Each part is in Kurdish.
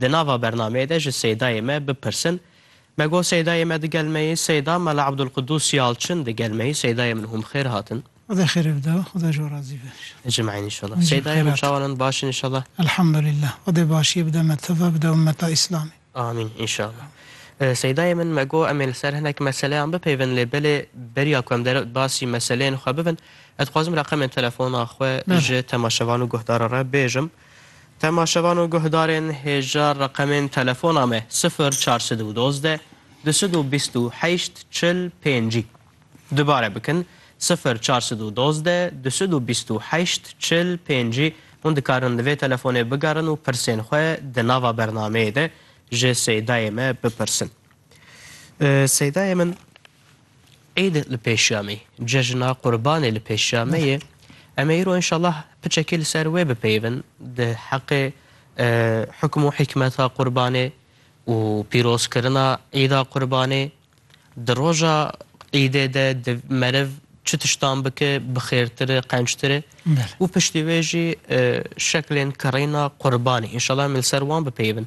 Di nava bernameyê de ji Seydayê me bipirsin, Me got Seydayê me digel me yê, Seyda Mela Ebdulqudûs Yalçin digel me yê, Seydayê min hûn bi xêr hatin. Xweda xêr ev da, Xweda ji we razî be înşallah. Ecmaîn înşallah. Seydayê min çawan in, baş in înşallah? Elhamdulillah. Xwedê başiyê bide me teva, bide ummeta Îslamê. Amîn înşallah. Seydayê min me got em ê li ser hinek meseleyan bipeyvin lê belê beriya ku em dere basî meseleyên xwe bibin, ez dixwazim reqemên telefona xwe ji temaşevan û guhdaran re bêjim. Temaşevan û guhdarên hêja reqemên telefona me sifir çar sed û dozdeh du sed û bîst û heşt çil pêncî dubare bikin, sifir çar sed û dozdeh du sed û bîst û heşt çil pêncî hûn dikarin li vê telefonê bigerin û pirsên xwe di nava bernameyê de ji Seydayê me bipirsin. Seydayê min. Îd li pêş ya me ye, cejna Qurbanê li pêş ya me ye. Em ê îro înşallah piçekî li ser wê bipeyivin di heqê hukm û hîkmeta Qurbanê û pîrozkirina Îda Qurbanê. Di roja Îdê de di meriv çi tiştan bike bi xêrtir e, qençtir e û piştî wê jî şeklên kirîna Qurbanê. Înşallah em ê li ser wan bipeyivin.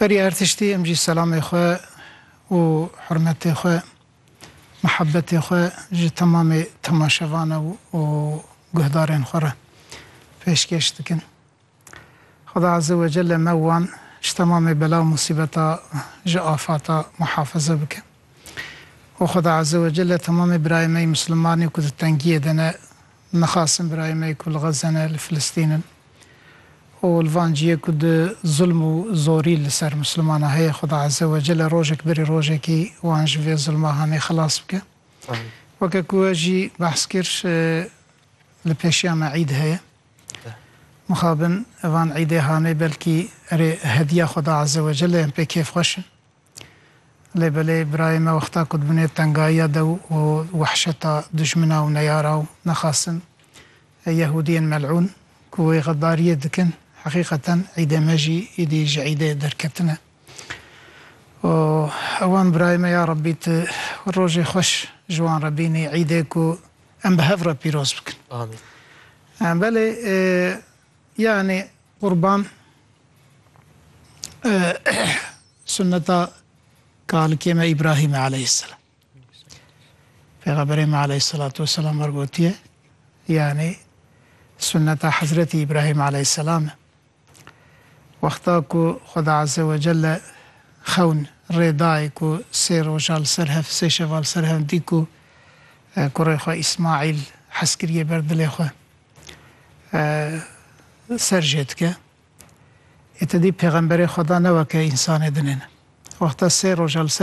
Berî her tiştî em jî selamê xwe û hurmetê xwe, mihebetê xwe ji temamê temaşevan ew û guhdarên xwe re pêşkêş dikin. Xuda Azze we Celle me û wan ji temamê bela û musîbeta ji afata muhafize bike. Û Xuda Azze we Celle temamê birayê me yê Muslimanî ku di tengiyê de ne Nixwasin birayên me ku li Xezze ne, li Filistîn in û li van ciyê ku di zulm û zorî li ser Mislimanan heye, Xuda Ezze we Celle rojek berî rojekî wan ji vê zulma hanê xilas bike. Weke ku we jî behs kir li pêşiya me îd heye. Mixabin van îdê hanê belkî erê hediya Xuda Ezze we Celle yên pê kêfxweş in. Lê belê birayê me wexta ku dibinê tengayiya de û wehşeta dijmina û neyara û nexasin Yehûdiyên mel'ûn ku wê xedariyê dikin heqîqeten îdê me jî îdî ji îdê derketin e û ewan birayê me ya Rabbî tu rojê xweş ji wan re bînî îdê ku em bi hev re pîroz bikin. Amîn. Belê yanî Qurban sunneta kalikê me Îbrahîm e aleyhîsselam. Pêxemberê me aleyhîsselatu weselam wer gotiye, yanî sunneta Hezretî Îbrahîm aleyhîsselam e. Wexta ku Xweda Azze ve Celle xewn rê dayê ku sê roja li ser hev, sê şeva li ser hev dît ku kurê xwe Îsmaîl hez kiriye ber dilê xwe. ser jê dike. Ê ti dî pêxemberê Xweda ne weke însanê dinêne. Wexta sê roja li ser